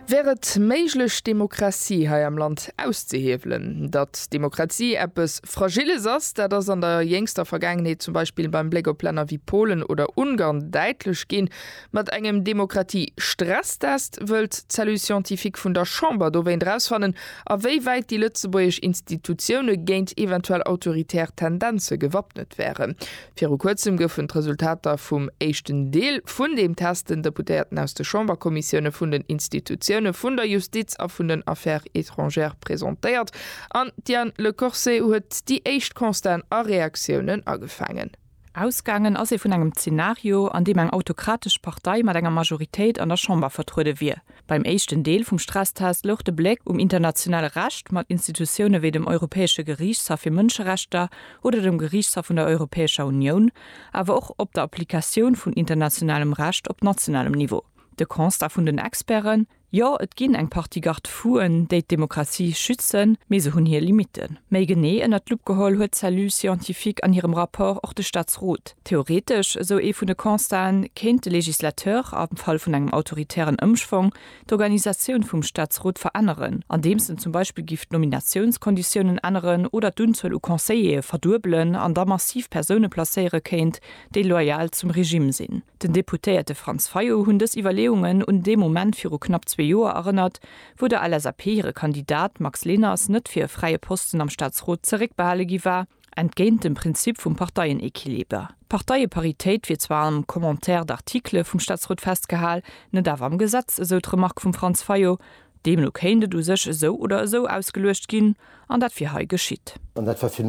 Wär et méiglech d'Demokratie hei am Land auszehiewelen? Datt d'Demokratie eppes Fragiles ass, dat ass an der jéngster Vergaangenheet zum Beispill beim Bléck op Länner wéi Polen oder Ungarn däitlech ginn. Mat engem Demokratie-Stresstest wëllt d'Cellule scientifique vun der Chamber dowéint erausfannen, a wéi wäit déi lëtzebuergesch Institutioune géint eventuell autoritär Tendenze gewappnet wären. Viru kuerzem goufen d'Resultater vum éischten Deel vun deem Test den Deputéierten aus de Chamberkommissioune vun den Institutioune vun der Justiz a vun den Affaires étrangères presentéiert an d'Diane Lecorse huet déi éischt Constaten a Reaktiounen agefaangen. Ausgaangen ass ee vun engem Zenario, an deem eng autokratesch Partei mat enger Majoritéit an der Chamber vertruede wier. Beim éischten Deel vum Stresstest louch de Bléck um internationale Recht, mat Institutioune wéi dem Europäesche Geriichtshaff fir Mënscherechter oder dem Geriichtshaff vun der Europäescher Unioun, awer och op der Applikatioun vun internationalem Recht op nationalem Niveau. De Constat vun den Experten, Jo, et ginn eng Partie Garde-fou'en, déi d'Demokratie schützen, mee se hunn hir Limitten. Méi genee ënnert d'Lupp geholl huet d'Cellule scientifique an hirem Rapport och de Staatsrot. Theoretesch, esou ee vun de Constaten, kéint de Législateur, am Fall vun engem autoritären Ëmschwong, d'Organisatioun vum Staatsrot veränneren, andeems en zum Beispill giff d'Nominatiounskonditiounen änneren oder d'Unzuel u Conseiller'e verduebelen an da massiv Persoune placéiere kéint, déi loyal zum Regime sinn. Den Deputéierte Franz Fayot hunn dës Iwwerleeungen un dee Moment viru knapp zwee Joer erënnert, wou der LSAP hire Kandidat Max Leners net fir e fräie Posten am Staatsrot zeréckbehale gi war, Entgéint dem Prinzip vum Parteienequiliber, Parteie-Paritéit, wier zwar am Commentaire d'articles vum Staatsrot festgehal, net awer am Gesetz, esou d'Remark vum Franz Fayot. Deemno kéint et u sech esou oder esou ausgeluecht ginn, an dat wier hei geschitt. An dat war, fir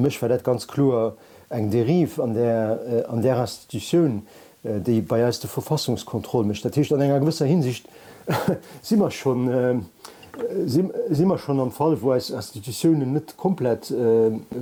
mech war dat ganz kloer eng Dérive an där Institutioun, déi bei eis de Verfassungskontroll mécht. Dat heescht, an enger gewësser Hinsicht si mer schonn, si mer schonn am Fall, wou eis Institutiounen net komplett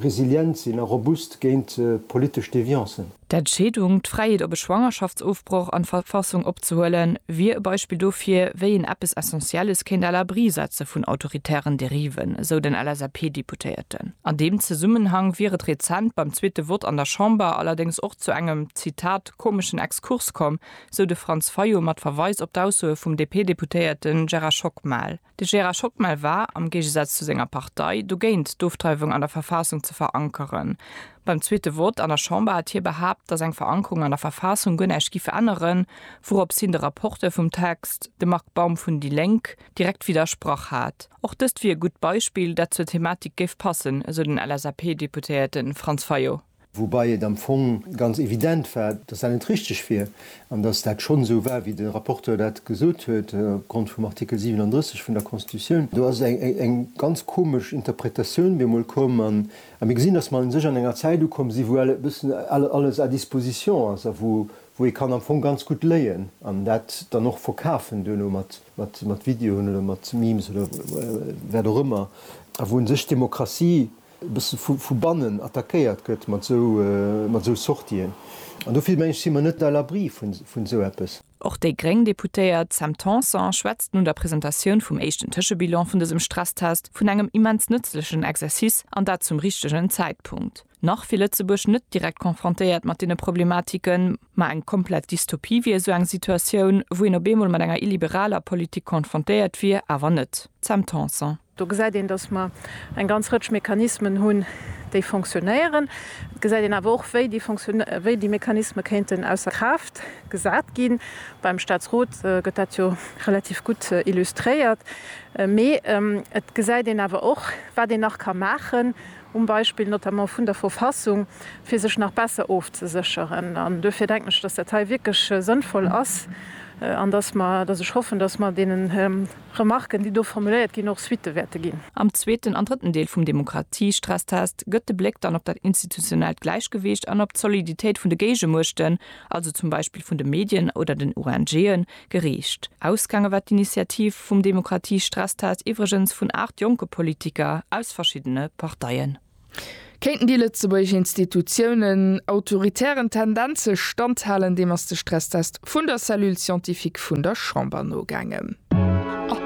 resilient sinn a robust géint politesch Deviancen. D'Entscheedung, d'Fräiheet op e Schwangerschaftsofbroch an d'Verfassung opzehuelen, wier e Beispill dofir, wéi een eppes Essentielles kéint à l'abri setze vun autoritären Dériven, esou den LSAP-Deputéierten. An deem Zesummenhang wier et rezent beim zweete Vott an der Chamber allerdéngs och, zu engem, Zitat, komeschen Exkurs komm, sou de Franz Fayot mat Verweis op d'Aussoe vum DP-Deputéierte Gerard Schockmel. De Gerard Schockmel war, am Géigesaz zu senger Partei, dogéint d'Ofdreiwung an der Verfaassung ze verankeren. Beim zweete Vott an der Chamber hat hie behaapt, datt eng Verankerung an der Verfaassung guer näischt giff änneren, wourops hien de Rapporteur vum Text, de Marc Baum vun déi Lénk, direkt widdersprach hat. Och dëst wier e gutt Beispill, dat zur Thematik géif passen, esou den LSAP-Deputéierte Franz Fayot. Woubai et am Fong ganz evident war, dass dat net richtig wier an dass dat schonn esou war, wéi de Rapporteur dat gesot huet, opgrond vum Artikel 37 vun der Constitutioun. Do ass eng ganz komesch Interpretatioun bemol komm. A mir gesinn, dass mer u sech an enger Zäit ukomm sinn, wou e bëssen alles à disposition ass a wou ee kann am Fong ganz gutt léien an dat dann och verkafen duerno mat Videoen oder mat Memes oder wat och ëmmer a wou u sech d'Demokratie, e bësse vu bannen attackéiert gëtt mat esou Sortien. An dofir, mengen ech, si mer net à l'abri vun esou eppes. Och déi gréng Deputéiert Sam Tanson schwätzt no der Presentatioun vum éischten Tëschebilan vun dësem Stresstest vun engem immens nëtzlechen Exercice, an dat zum richtegen Zäitpunkt. Nach wier Lëtzebuerg net direkt confrontéiert mat deene Problematiken, ma eng komplett Dystopie wier esou eng Situatioun, wou een op eemol mat enger illiberaler Politik confrontéiert wier, awer net. Sam Tanson. Do gesäit een, dass mer eng ganz Rëtsch Mechanismen hunn, déi fonctionnéieren. Et gesäit een awer och, wéi déi Fonction, wéi déi Mechanisme kéinten ausser Kraaft gesat ginn. Beim Statsrot gëtt dat jo relativ gutt illustréiert. Mee et gesäit een awer och, wat een nach ka maachen, um Beispill notamment vun der Verfassung, fir sech nach besser ofzesécheren. An duerfir denken ech, dass dat hei wierklech sënnvoll ass an dass mer, dass ech hoffen, dass mer deenen, Remarken, déi do formuléiert ginn, och Suitte wäerte ginn. Am zweeten an drëtten Deel vum Demokratiestresstest gëtt de Bléck dann op dat institutionellt Gläichgewicht an op d'Soliditéit vun de Géigemuechten, also zum Beispill vun de Medien oder den ONGen, geriicht. Ausgaange war d'Initiativ vum Demokratiestresstest iwwregens vun 8 jonke Politiker aus verschiddene Parteien. Kéinten déi lëtzebuergesch Institutiounen autoritären Tendenze standhalen? Deem ass de Stresstest vun der Cellule scientifique vun der Chamber nogaangen.